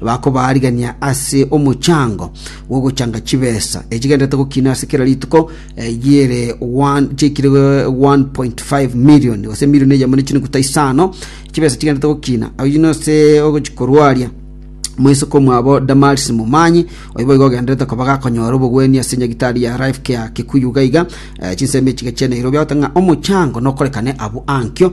Bakobaarigania ase omochango bw'ogochanga chibesa echigenderete gokina ase kera rituko, eyio ere one- chiaikire 1.5 million, gose emilioni eyemo ne chinuguta isano, chibesa chigenderete gokina. Oyio nose ogochikorwaria moiseke omwabo Damaris Momanyi, oyo boigo ogenderete koba gakonyora obogwenia ase nyagitari ya Life Care Kikuyu iga iga, eh, chinsemo echiga chia Nairobi, agoteba ng'a omochango nokorekane abwo ankio,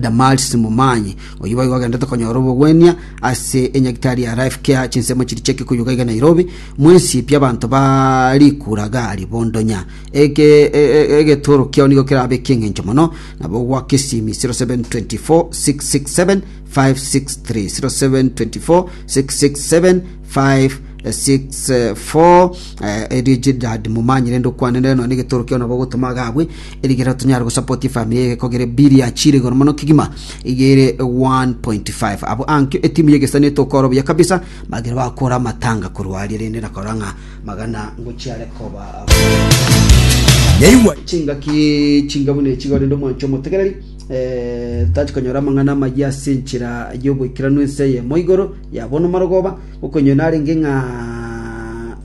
Damarisi Momanyi. Oyio boigo agendete konyora obogwenia ase enyagitari ya Life Care chinsemo chiri chia Kikuyu gaiga Nairobi, mwensipi abanto ba rikura gari bondonya. Eke e- e- egetoro kiao nigo kerabe ekieng'encho mono nabo gwaka esimi 0724 667 563 0724 667 564 eh, erio ejidad momanyire ndokwanere nonya egetoro kiao nabo ogotoma agabwe Erikero tonyare gosapotia efamiri eye gekogere biri ya chire igoro mono kegima iga ere 1.5 abo ankio etimu y'egesani etokora obuya kabisa magere bakora amatanga korwa aria rende nakora ng'a magana ngochiare koba Yaigwa chingaki chinga buna echi igo rende omwancho omotegereri eh, tachi konyora amang'ana amayia ase enchera y'oboikeranu ense eyemo igoro ya bono marogoba okonyo narenge ng'a